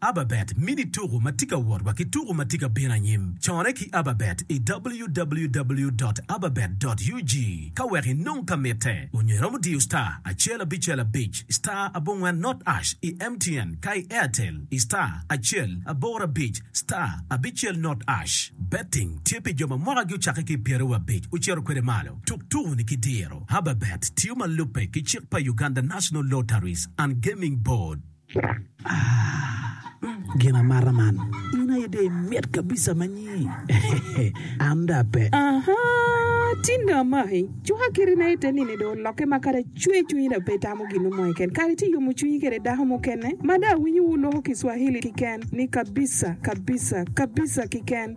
Ababet mini tuku ma tye ka wot wa ki tuku ma tye ka bino anyim. Corre ki Ababet i www dot ababet dot ug ka wek inong ka mitte, onyo iromo diyo star acel abicel abic star abongwen not ash i MTN ka i Airtel i star acel aboro abic star abicel not ash. Betting tye pi jo ma mwaka gi ocakke ki i pyere wa abic ocito kwede malo. Tuk tuku ni ki diro. Ababet tiyo ma lubbe ki cik pa Uganda National Lotteries and Gaming Board. Gin amata man in aye dong imit kabisa ma nyi an dong ape. Tin dong amaki cuka kiti na ite nini dong olokke ma kadi acwe cwinyi dong pe itamo gin mo keken kadi ci iyomo cwinyi kede dako mukene ma dong awinyo wu loko kiswahili kiken ni kabisa kabisa kabisa kiken.